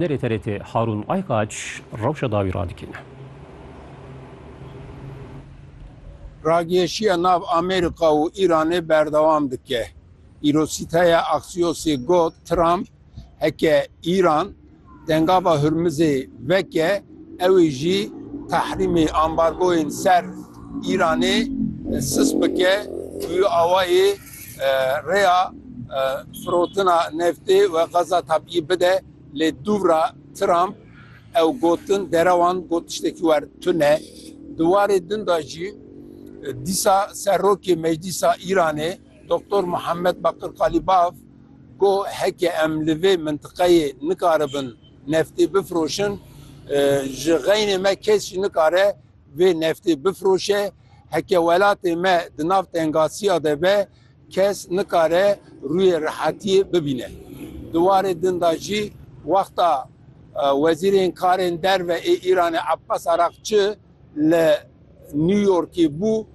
Nerê TRT Harûn Aykaç rewşa dawî radikêne. Ragihêşiya nav Amerîka û Îranê berdewam dike. Îrosîteya Axiosê got Trump heke Îran Dengava Hurmizê veke ewê jî tehrîmê, ambargoyên ser Îranê sis bike û awayê Rêya firotina neftê we xeza tabiyî bide lê dûvra Trump ew gotin derewan got tiştekî wer tune. Di warê din de jî dîsa serokê Meclîsa Îranê Doktor Muhammed Bakir Qalîbaf got heke em li vê mintiqeyê nikaribin neftê bifiroşin ji xeynê me kes jî nikare vê neftê bifiroşe Heke welatê me di nav tengasiya de be, kes nikare rûyê rehatiyê bibîne. Di warê din de jî wexta Wezîrên Karên Derve ê Îranê Abbas Araqçi li New Yorkê bû,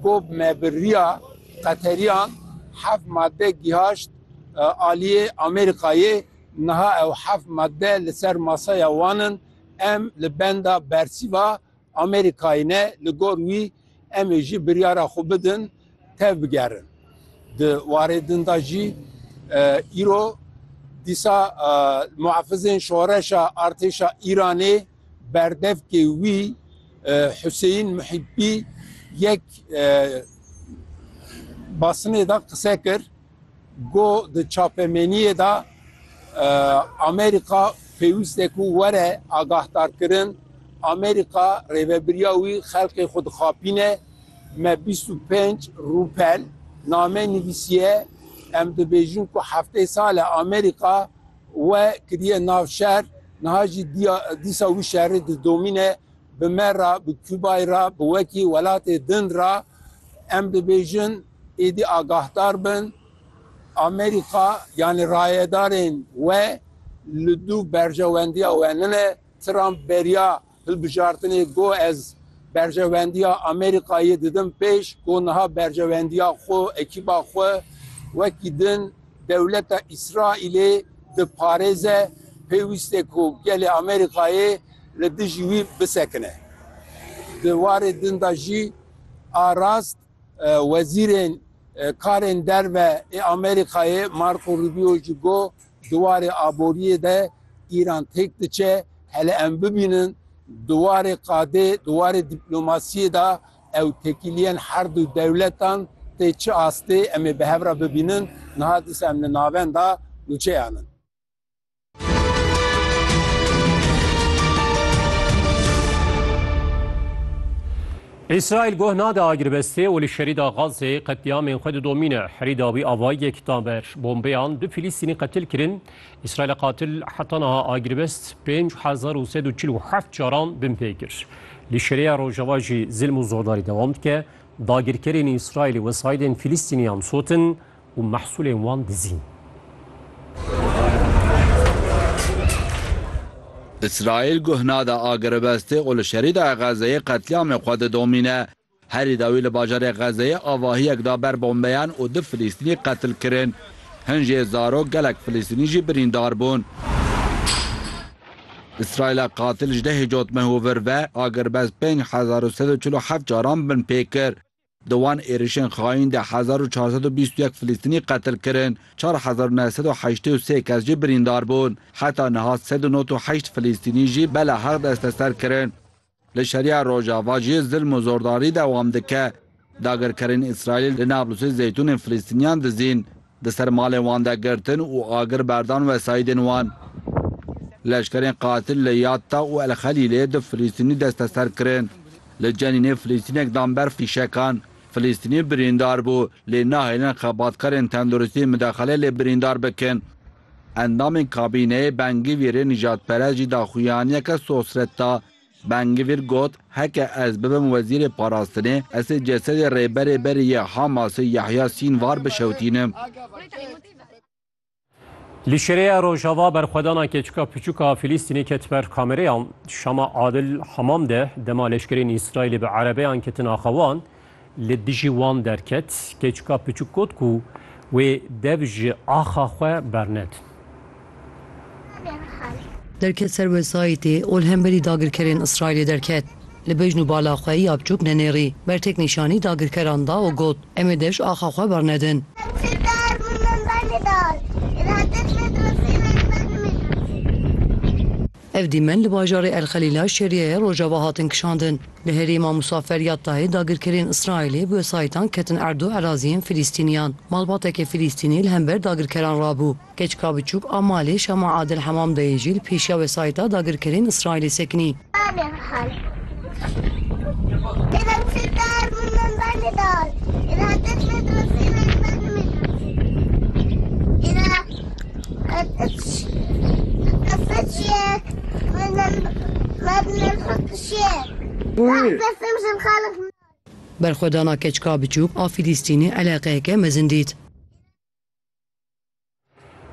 got me bi riya Qeteriyan heft madde gihaşt aliyê Amerîkayê, niha ew heft madde li ser masaya wan in, em li benda bersîva Amerîkayê ne li gor wî em ê jî biryara xwe bidin tev bigerin. Di warê din de jî îro dîsa muhafizên şoreşa artêşa Îranê berdevkê wî Huseyîn Muhîbî yek basnê de qise kir. Go di çapemeniyê de Amerîka pêwîste ku were agahdarkirin, Amerîka rêvebiriya wî xelkê xwe dixapîne, me bîst û pênc rûpel name nivîsiye, em dibêjin ku heftê sal e Amerîka we kiriye nav şer, niha jî dîsa wî şerê didomîne bi me re, bi Kûbayê re, bi wekî welatê din re, em dibêjin, Êdî agahdar bin, Amerîka yanî rayedarên we li dû berjewendiya we nine. Trump beriya hilbijartinê got ez berjewendiya Amerîkayê didim pêş ku niha berjewendiya xwe û ekîba xwe wekî din dewleta Îsraîlê diparêze, pêwîst e ku gelê Amerîkayê li dijî wî bisekine. Di warê din de jî a rast, Wezîrên Karên Derve ê Amerîkayê Marco Rubio jî got, Di warê aboriyê de Îran têk diçe, hele em bibînin di warê qadê, di warê dîplomasiyê de ew tekîliyên herdû dewletan tê çi astê em ê bi hev re bibînin, niha dîsa em li navenda nûçeyan in. Îsraîl goh nade agirbestê û li şerîda Gazê qetlîamên xwe didomîne. Herîda wî avayiyek da ber bombeyan du Filîstînî qetil kirin. Îsraîla qatil heta niha agirbest pênc hezar û sed û çil û heft caran bin pê kir. Li Şêreya Rojava jî zilm û zordarî dewam dike. Dagirkerên Îsraîlî wesayidên Filîstîniyan sotin. û mehsûlên wan dizîn. Îsraîl guh nade a girêbestê û li Şerîdaya Xezzeyê qetlîamê xwe didomîne. Herî dawî li bajarê Xezzeyê avahiyek da ber bombeyan û du Filîstînî qetil kirin. Hin jê zarok gelek Filîstînî jî birîndar bûn. Îsraîla qatil ji dehê cotmeh û vir ve agirbest pênc hezar û sed û çil û heft caran binpê kir. Di wan êrişên xaîn de hezar û çar sed û bîst û yek Filistînî qetil kirin, çar hezar û neh sed û heştê û sê kes jî birîndar bûn. Heta niha sed û nod û heşt Filistînî jî bela heq desteser kirin. Li Şeriya Rojava jî zilm û zordarî dewam dike. Dagirkerên Îsraîlî li Nablusê zeytûnên Filistîniyan dizîn. Di ser malên wan de girtin û agir berdan wesaîdên wan. Leşkerên qatil li Yatta û El Xelîlê du Filîstînî desteser kirin. Li Cenînê Filîstînek dan ber fîşekan. Filîstînî birîndar bû, lê nahêlin xebatkarên tenduristî midexele lê birîndar bikin. Endamên kabîneyê Ben Gvîrê nijadperest jî daxuyaniyeke sosret da. Ben Gvir got, Heke ez bibim wezîrê parastinê, ez ê cesedê rêberê berê yê Hamasê Yahya Sînvar bişewtînim. Li Şireya Rojava berxwedana keçika piçûk a Fîlîstînê ket ber kamereyan. Şama Adil Hamam de dema leşkerên Îsraîlê bi erebeyan ketin axa wan, li dijî wan derket, keçika piçûk got ku wê dev ji axa xwe bernedin. Derket ser wesayîtê û li hemberî dagirkerên Îsraîlê derket. Li bejn û bala xwe ya piçûk nenêrî, bertek nîşanî dagirkeran da û got, Em ê dev ji axa xwe bernedin. Ev dîmen li bajarê El Xelîla şeriyeyê Rojava hatin kişandin. Li herêma Musafer ya tayê dagirkerên Îsraîlê bi wesayîtan ketin erdo eraziyên Filîstîniyan. Malbatekê Filîstînî li hember dagirkeran rabû. Keçika biçûk a malê Şama Adel Hemamdayê jî li pêşiya wesayîta dagirkerên Îsraîlê sekinî. Berxwedana keçika biçûk a Fîlîstînê eleqeyeke mezin dît.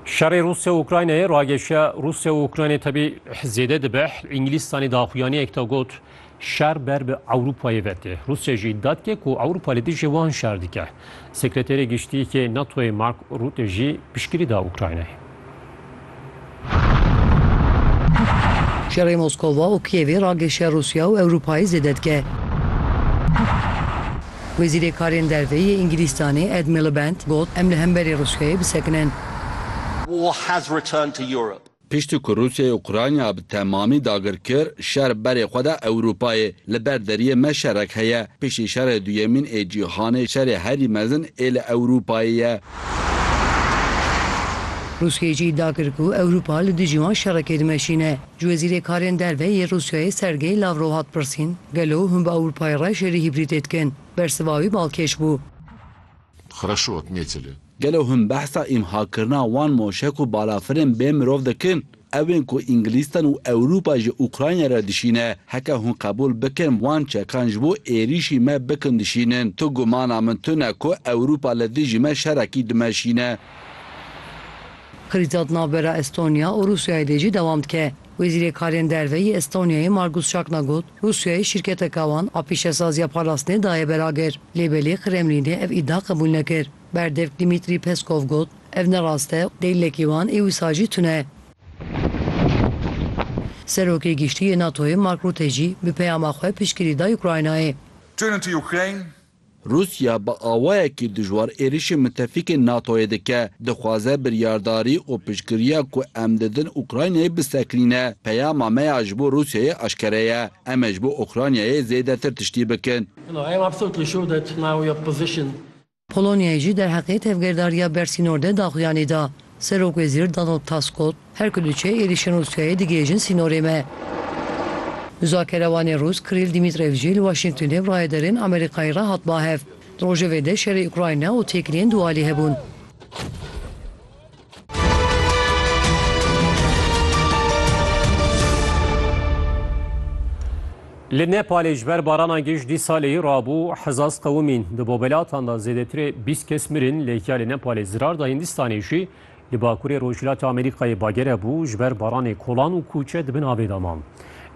Şerê Rusya û Ukraynayê rageşiya Rusya û Ukraynayê tebî zêde dibe. Îngilîstanî daxuyanî ek got şer ber bi Ewropayê vetê. Rusya jî îddia dike ku Ewropa li dijî wan şer dike. Sekreterê Giştî yê NATOyê Mark Rutte jî piştgirî da Ukraynayê. Şerê Moskova û Kîevê ragêşiya Rûsya û Ewropayê zêde dike. Wezîrê Karên Derve yê Îngilîstanê Ed Miliband got, Em li hemberî Rûsyayê bisekinin. Piştî ku Rûsyayê Ukrayna bi temamî dagir kir, şer berê xwe da Ewropayê. Li ber deriyê me şerek heye. Piştî Şerê Duyemîn ê Cîhanê şerê herî mezin ê li Ewropayê ye. Rûsyayê jî îdia kir ku Ewropa li dijî wan şerekê dimeşîne. Ji wezîrê karên derve yê Rûsyayê Sergey Lavrov hat pirsîn, Gelo hûn bi Ewropayê re şerî hîbrîdê dikin? Bersiva wî balkêş bû. Xreşot nêçile. Gelo hûn behsa îmhakirina wan moşek û balafirên bê mirov dikin? Ew ên ku Îngilîstan û Ewropa ji Ukrayna re dişîne, heke hûn qebûl bikin wan çekan ji bo êrîşî me bikin dişînin, tu gumana min tune ku Ewropa li dijî me şerekî dimeşîne. Krîza di navbera Estonya û Rûsyayê de jî dewam dike. Wezîrê Karên Derve yê Estonyayê Margus Şakna got, Rûsyayê şîrketeke wan a pîşesaziya parastinê daye ber agir, lê belê Kremlînê ev îdia qebûl nekir. Berdevk Dmîtrî Peskov got, Ev ne rast e, deylekî wan ê wisa jî tune ye. Serokê Giştî yê NATO'yê Mark Rutte jî bi peyama xwe piştgirî da Ukraynayê. Turn into Ukraine. Rûsya bi awayekî dijwar êrişî mitefîkên NATO'yê dike, dixwaze biryardarî û piştgiriya ku em didin Ukraynayê bisekinîne. Peyama me ya ji bo Rûsyayê eşkere ye, em ê ji bo Ukraynayê zêdetir tiştî bikin. Polonyayê jî derheqê tevgerdariya bersînor de daxuyanî da. Serokwezîr Donald Tusk got, Her ku diçe êrîşên Rûsyayê digihêjin sînorê me. Muzakerewanê Rûs Krîl Dîmîtrev jî li Waşîngtonê bi rayederên Amerîkayê re hat bahev. Di rojevê de şerê Ukrayna û têkiliyên dualî hebûn. Li Nepalê ji ber barana giş dî salê rabû hezaz qewimîn di bobelatan de zêdetirê bîst kes mirin lê ya li Nepalê zirar da Hindistanê jî li bakurê Rojhilatê Amerîkayê bagere bû ji ber baranê kolan û kûçe di bin avê de man.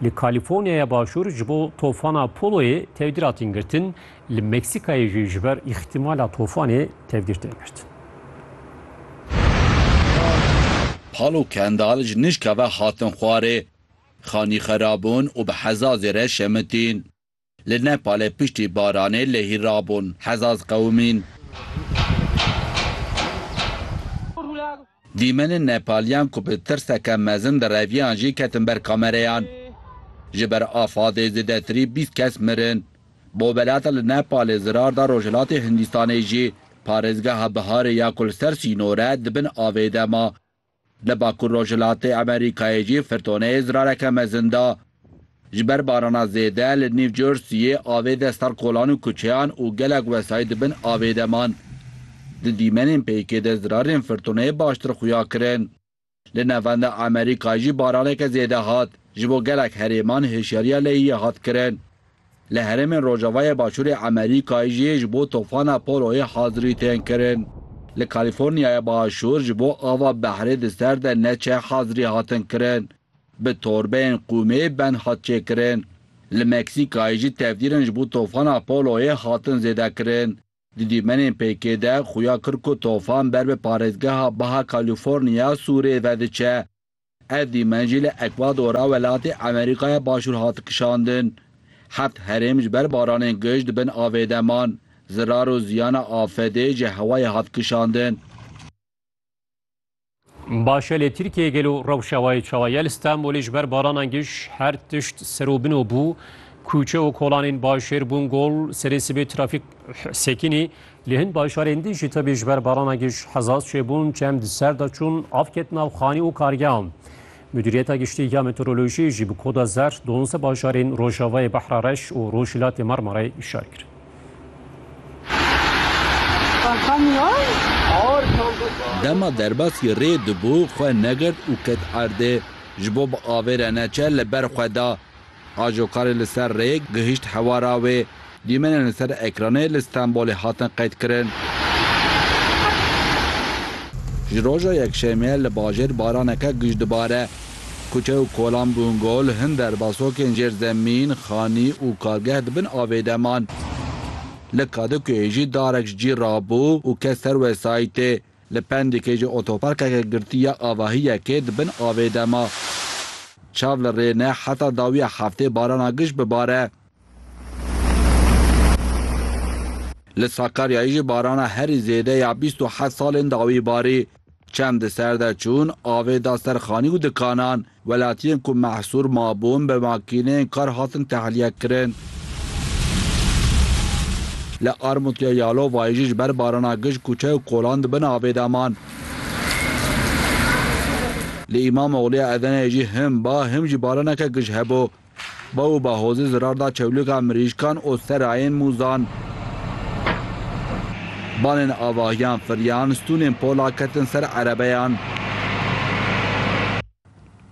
Li Kalîforniyaya Başûr ji bo tofana Poloyê tevdîratîn girtin Li Meksîkayê jî ji ber îxtîmala tofanê tevgîr tên girtin. Pal û Kendal ji nijka ve hatin xwarê. Xanî xera bûn û bi hezazê re şemitîn. Li Nepalê piştî baranê lehî rabûn, hezaz qewimîn. Dîmenên Nepaliyan ku bi tirseke mezin direviyan jî ketin ber kamereyan. Ji ber afadê zêdetirî bîst kes mirin. Bo welata li Nepalê zirar da Rojhilatê Hindistanê jî parêzgeha Biharê ya ku li ser sînore di bin avê de ma. Li Bakur Rojhilatê Amerîkayê jî firtoneyê zirareke mezin da. Ji ber barana zêde li New Jerseyê avê de ser kolan û kuçeyan û gelek wesayît di bin avê de man. Di dîmenên pêkê de zirarên firtoneyê baştir xuya kirin. Li navenda Amerîkayê jî baraneke zêde hat. Ji bo gelek herêman hişyariya lehiyê hat kirin. Li herêmên rojavayê başûrê Amerîkayê jî ji bo tofana Poloyê hazirî tên kirin. Li Kalîforniyaya Başûr ji bo ava behrê di ser de neçe hazirî hatin kirin. Bi torbeyên qûmê bend hat çêkirin. Li Meksîkayê jî tevdîrên ji bo tofana Poloyê hatin zêdekirin. Di dîmenên pêkê de xuya kir ku tofan ber bi parêzgeha Baha California Sûrê ve diçe. Ev dîmen jî li Ekwadora welatê Amerîkaya Başûr hat kişandin. Heft herêm ji ber baranên gij di bin avê de man. Zirar û ziyana afedê ji hewayê hat kişandin. Başelê Tirkiyê gelo rewşa wayê çawa ye li Stenbolê ji ber baranan giş her tişt serobino bû. Kûçe û kolanên başêr bûn gol, serê sibê trafîk sekinî. Li hin başarên din jî tevî ji ber barana giş hezaz çêbûn, çem di ser de çûn, av ket nav xanî û kargehan. Mudîriyeta Giştî ya Meteorolojiyê jî bi koda zer duwazdeh bajarên rojavayê Behra Reş û Rojhilatê Marmarayê îşar kir. Dema derbasî rê dibû xwe negirt û ket erdê. Ji bo bi avê re neçe li ber xwe da. Ajo karê li ser rêyê gihîşt hewara wê. Dîmenên li ser ekranê li Stenbolê hatin qeydkirin. Ji roja Yekşemê li bajêr baraneke gij dibare. Kuçe û kolan bûn gol, hin derba sokên jêr zemîn, xanî û kargeh di bin avê de man. Li Kadikuyê jî darek ji cî rabû û kes ser wesayîtê. Li Pendîkê ji otoparkeke girtî ya avahiyekê di bin avê de ma. Çav li rê ne heta dawiya heftê barana giş bibare. Li Sakaryayê jî barana herî zêde ya bîst û heft salên dawî barî. Çem di ser de çûn, avê da ser xanî û dikanan. Welatiyên ku mehsûr mabûn bi makîneyên kar hatin tehliyekirin. Li armûtiya Yalovayê jî ji ber barana gij kûçe û kolan di bin avê de man. Li Îmamogliya Edeneyê jî him ba him jî baraneke gij hebû. Baw û bahozê zirar da çewlika mirîşkan û serayên mûzan. Balên avahiyan firiyan, stûnên pola ketin ser erebeyan.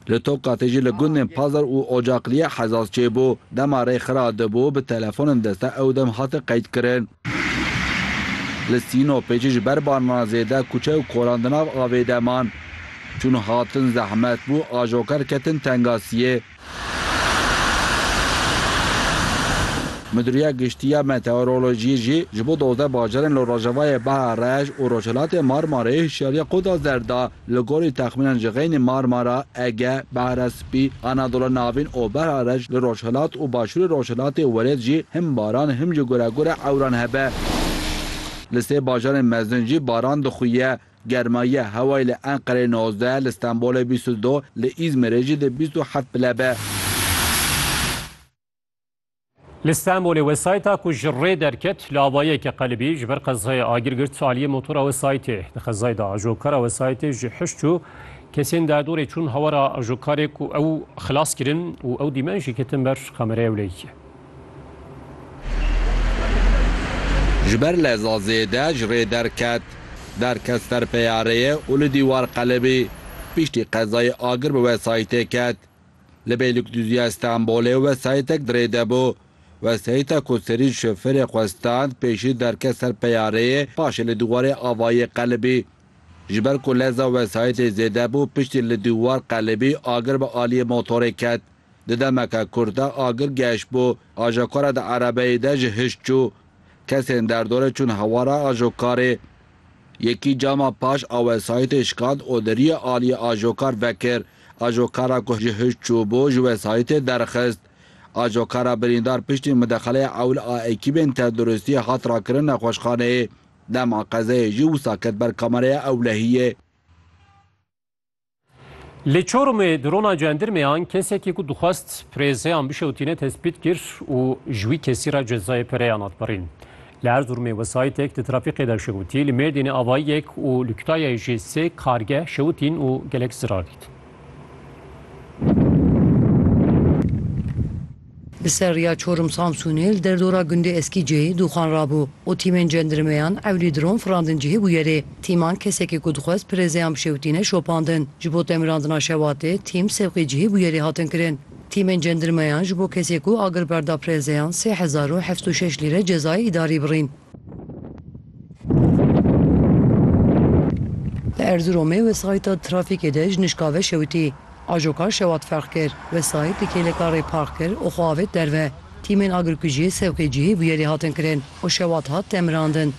Li Tokatê jî li gundên Pazar û Ocakliye hezaz çêbû. Dema rê xira dibû, bi telefonên deste ew dem hate qeydkirin. Li Sînopê jî ji ber barana zêde kuçe û kolan di nav avê de man. Çûn hatin zehmet bû, ajoker ketin tengasiyê. Midûriya Giştî ya Meteorolojiyê jî ji bo dozdeh bajarên li rojavayê Bahar-Reş û Rojhilatê Marmarayê hişyariya Quda Zer da. Li gorî texmînan ji xeynî Marmara, Ege, Behra Spî, Anadola Navîn û Behra Reş li rojhilat û başûrê rojhilatê welêt jî him baran him jî guregure ewran hebe. Li sê bajarên mezin jî baran dixuye. Germayiya hewayê li Enqereyê nozdeh, li Stenbolê bîst û du, li Îzmirê jî dê bîst û heft pile be. Li Stenbolê wesayîta ku ji rê derket li avayeke qelibî ji ber qezayê agir girt aliyê motora wesayîtê. Di qezayê de ajokara wesayîtê ji heşt çû kesên derdorê çûn hawara ajokarê ku ew xilas kirin û ew dîmen jî ketin ber kameraya wleyîkê. Ji ber leza zêde ji rê derket. Derket ser peyareyê û li dîwar qelibî. Piştî qezayê agir bi wesayîtê ket. Li Bêlikdûziya Stenbolê wesayîtek di rê de bû. Wesayîta ku serî şoferê xwe stand pêşî derket ser peyareyê paşê li dîwarê avayî qelibî. Ji ber ku leza wesayîtê zêde bû piştî li dîwar qelibî agir bi aliyê motorê ket. Di demeke kurt de agir geş bû. Ajokarê di erebeyê de ji hişt çû. Kesên derdorê çûn hewara ajokarê. Yekî cama paş a wesayîtê şikand û di riyê aliyê ajokar vekir. Ajokara ku ji hişt çû bû ji wesayîtê derxist. Ajokara birîndar piştî midexeleyê ewil a ekîbên tenduristiyê hat rakirin nexweşxaneyê. Dema qezeyê jî wisa ket ber kamereya ewlehiyê. Li Çorumê drona cendirmeyan kesekî ku dixwest pirêzeyan bişewtîne tespît kir û ji wî kesî re cezayê pereyan hat birîn. Li Erzurumê wesayîtek di trafîkê de şewitî, li Mêrdînê avayiyek û li Kutayayê jî sê kargeh şewitîn û gelek zirar dîtin. Li ser rêya Çorum Samsûnê li derdora gundê Eskîceyê dûxan rabû û tîmên cendirmeyan ewlî dron firandin cihê bûye rê. Tîman kesekî ku dixwest pirezeyan bişewitîne şopandin. Ji bo temirandina şewatê tîm sevqê cihê bûye rê hatin kirin. Tîmên cendirmeyan ji bo kesê ku agir berda pirezeyan sê hezar û heft û şeş lîre cezayê îdarî birîn. Li Erziromê wesayîta trafîkê de ji nişkave şewitî. Ajoka şewat ferq kir. Wesayît di kêleka rê park kir û xwe avêt derve. Tîmên agirkujiyê sewqê cihê bûyerê hatin kirin û şewat hat temirandin.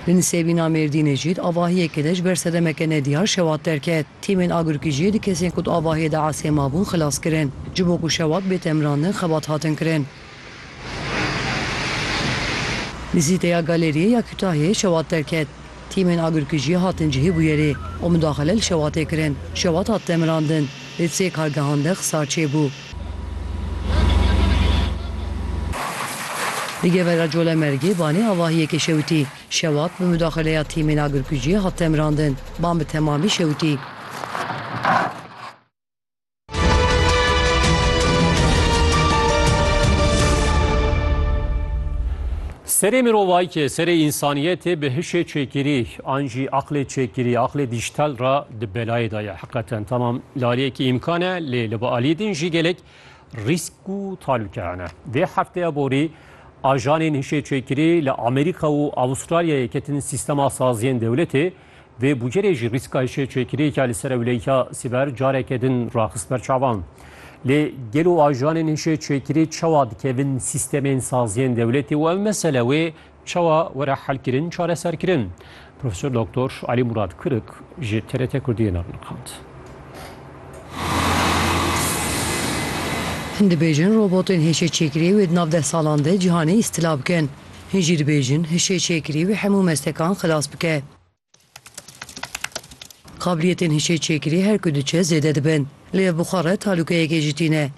Li Nisêbîna Mêrdînê jî di avahiyekê de ji ber sedemeke nediyar şewat derket. Tîmên agirkujiyê du kesên ku di avahiyê de esê mabûn xilas kirin. Ji bo ku şewat bê temirandin xebat hatin kirin. Nizîteya Galeriyê ya Kûtahiyê şewat derket. Tîmên agirkujiyê hatin cihê bûyerê û midaxile li şewatê kirin. Şewat hat demirandin, lê sê kargehan de xisar çêbû. Li Gevera Colemêrgê banê avahiyê ke şewitî. Şewat bi midaxileya tîmên agirkujiyê hat demirandin. Ban bi temamî şewitî. Serê mirovayîkê, serê însaniyetê bi hişê çêkirî an jî aqlê çêkirî, aqlê dîjîtal re di belayê de ye. Hiqeten tamam lariyekî îmkan e lê li bi aliyê din jî gelek rîsk û talûke hene. Vê hefteya borî ajanên hişê çêkirî li Amerîka û Avustralyayê ketin sîstema saziyên dewletê Vê bûcerê jî rîska hişêçêkiriyeke li ser ewleya sîber careke din raxist ber çavan. Lê gelo ajanên hişêçêkirî çawa dikevin sîstemên saziyên dewletê û ev mesele wê çawa were helkirin, çareserkirin? Profesor Doktor Elî Murad Kurik ji TRT Kurdiyê navnixand. Dibêjin robotên hişêçêkirî wê di nav deh salan de cîhanê îstila bikin. Hin jî dibêjin, hişê çêkirî wê hemû mestekan xilas bike. Qabiliyetên hişê çêkirî her ku diçe zêde dibin. Li ev buxare talûkeyekê jî tîne.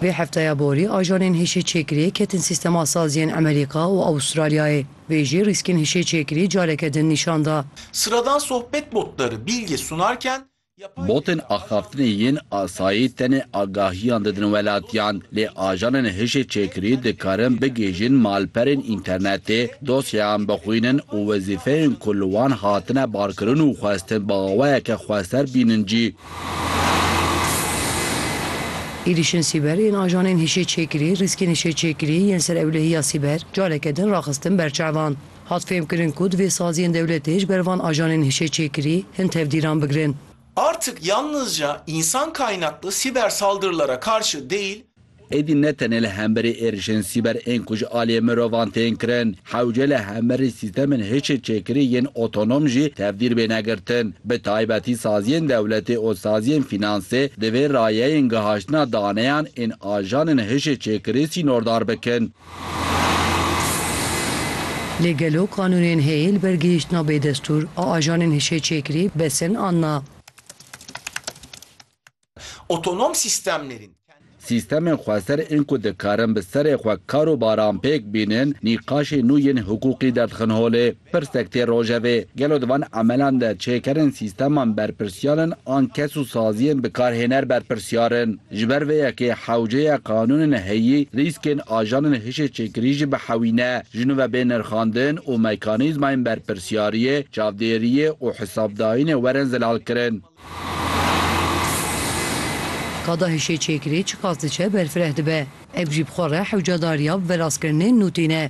Vê hefteya borî ajanên hişê çêkiriyê ketin sîstema saziyên Emerîka û Awûstralyayê. Vê jî rîskên hişê çêkirî careke din nîşan da. Sıradan sohbet botları bilgi sunarken Botên axaftinê yên asayî tenê agahiyan didin welatiyan, lê ajanên hişê çêkirî dikarin bigihîjin malperên înternetê, dosyeyan bixwînin û wezîfeyên ku li wan hatine barkirin û xwestin bi awayeke xweser bînin jî. Êrîşên sîber yên ajanên hişê çêkirî rîskên hişê çêkirî yên ser ewlehiya sîber careke din raxistin ber çavan. Hat fêmkirin ku divê saziyên dewletê ji ber van ajanên hişê çêkirî hin tevdîran bigirin. Artık yalnızca insan kaynaklı siber saldırılara karşı değil, Êdî ne tenê li hemberî êrişên sîber ên ku ji aliyê mirovan tên kirin, hewce li hemberî sîstemên hişê çêkirî yên otonom jî tevdîr bêne girtin. Bi taybetî saziyên dewletê û saziyên fînansê divê rayeyên gihaştina daneyan ên ajanên hişê çêkirî sînordar bikin. Lê gelo qanûnên heyî li ber gihîştina bêdestûr a ajanên hişê-çêkirî besin an na? Otonom sîstemnêrîn. Sîstemên xweser ên ku dikarin bi serê xwe kar û baran pêk bînin, nîqaşê nû yên hiqûqî derdikin holê. Pirsek tê rojevê, gelo di van emelan de çêkerên sîsteman berpirsyar in an kes û saziyên bikarhêner berpirsyar in? Ji ber vê yekê hewceya qanûnên heyî rîskên ajanên hişê çêkirî jî bihewîne, ji nû ve bê nirxandin û mekanîzmayên berpirsyariyê, çavdêriyê û hisabdayînê werin zilalkirin. Kada hişê çêkirê çiqas diçe berfireh dibe. Ev jî bi xwe re hewcadariya bi verastkirinên nûtî ne.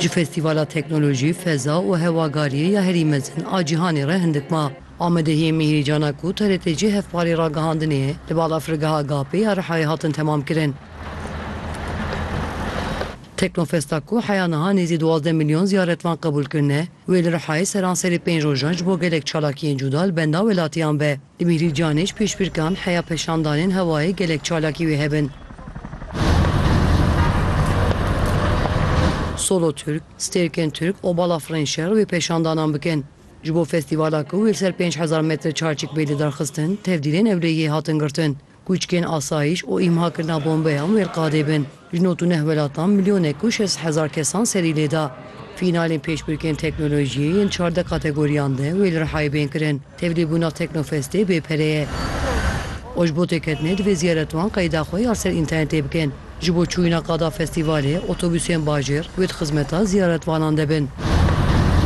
Ji Festîvala Teknolojî, Feza û Hewagariyê ya herî mezin a cîhanê re hindik ma. Amedehiyê Mîhrîcan a ku TRT'cî hevparê ragihandinê ye, li balafirgeha GAP'ê ya Rihayê hatin temamkirin. Teknofesta ku heya niha nêzî duwazdeh milyon ziyaretvan qebûl kirine, wê li Rihayê seranserê pênc rojan ji bo gelek çalakiyên cuda li benda welatiyan be. Di bîrî canê ji pêşbirkan heya peşandanên hewayê gelek çalakî wê hebin. Solo Türk, Stêrkên Türk û Bala Firên Şer wê peşandanan bikin. Ji bo festîvala ku wê li ser pênc hezar metre çarçik bê lidarxistin, tevdîrên ewlehiyê hatin girtin. Kûçkên asayîş û îmhakirina bombeyan wêrqadê bin. Ji nod û neh welatan milyonek û şeş hezar kesan serî lê da. Fînalên pêşbirkên teknolojiyê yên çardeh kategoriyan de wê li Rihayê bên kirin. Tevlîbûna Teknofestê bê pere ye. Û ji bo têketinê divê ziyaretwan qeyda xwe ya ser înternetê bikin. Ji bo çûyîna qada festîvalê otobûsên bajêr wê di xizmeta ziyaretvanan de bin.